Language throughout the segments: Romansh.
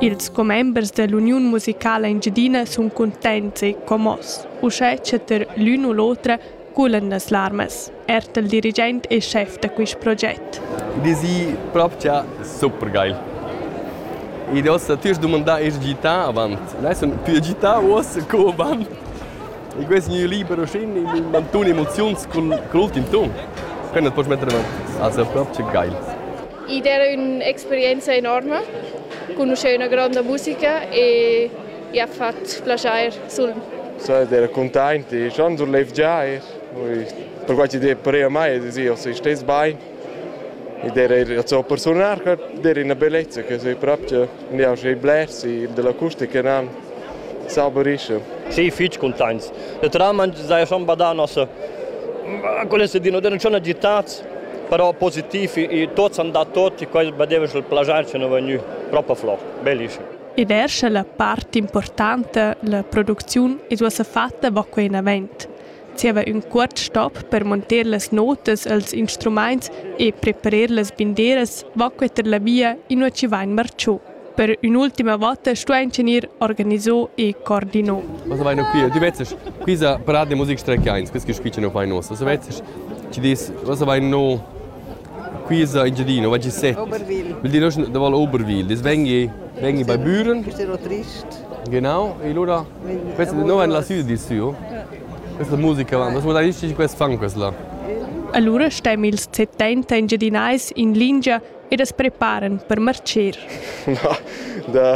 Ils commembers dall'uniun musicala engiadina sun cuntents e commoss, uschè cha ter l'ün u l'otra culan las larmas, erta il dirigent e schef da quist proget. Id es i propcha super geil. Id hossa tüs dumandà eir gità avant. Nus sun pü agità uossa co avant. E quest gnü liber uschin il mantun emoziuns cun l'ultim ton. Können das metter avanti. Also propcha geil. Id era ün'experienza enorma, conoscer üna gronda musica e ja fat plaschair sul. So ed era cuntaint e schon sur levgià er. Perquai chi d'he pareva mai ed sia se stess bain. Ed era er so per suonar che der ina bellezza che sei proprio ja sei blers dell'acustica nan saberisce. Sì, fich cuntaints. E tra man sai schon badà nossa quelle se di non c'è una gittaz Però positiv, i tuots han dat tuot, quai badeva sch'el plagiar che nu vegnu propa flò. Bellischem. E ver scha la part importanta, la producziun, id uossa fatta va quai inavant. Zieva ün cuort stop per monter las notas e'ls instrumaints e preparer las binderas va quai tar la via inua chi vain marchù. Per ün'ultima vota stuain gnir organiso e coordino. Was vai no qui? Tu vezzes, quisa parade de musica strechiains, quis che squiccia no fai nossa. So vezzes, ci dis, was vai no quisa in Giadino, vai ci sette. Oberwil. Will dir noschen da val Oberwil. Dis vengi, vengi bei Büren. Quest è trist. Genau, e allora, questa no en la sud di su. Questa musica, was mo dai nici quest fun quest là. Allora stem ils 70 engiadinais in lingia ed as preparan per marcher. Na, da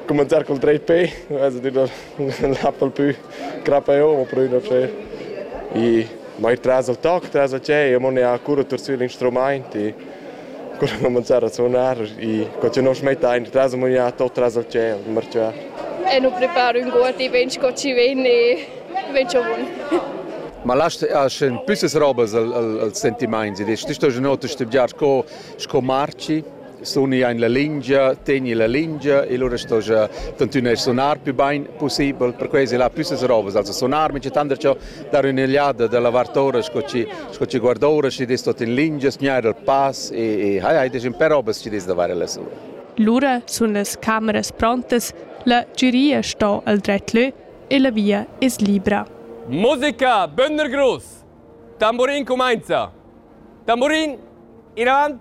cominciar col trade pay, also dir la pal pü crappa eo, ma però üna fe. E mai tras al toc, tras a ce, e mo ne ha cura tur sü l'instrumaint e cura cominciar a suonar e co ce non smetta ein tras a maniar tot tras al ce, marciar. E nu preparo ün guoti ben co ci ven e Vegn tschavun. Ma lasst aschen püssas robas al, al, als sentimaints ed es sto genota stübgiar sco, sco marci suni ein la lingia, tegni la lingia e lura sto ja tantüna sonar più bain possibel, per questi là püssas robas, also sonar mi c'è tanta ciò dar un'eliada dalla vartora sco ci, sco ci guardora ci des tot in lingia, sgnar il pass e, e hai hai des un per robas ci des da fare la sua. Lura sun las cameras prontas, la giuria sto al dret lö e la via es libra. Musica, Bönder Gruss! Tamburin cumainza! Tamburin, in avant,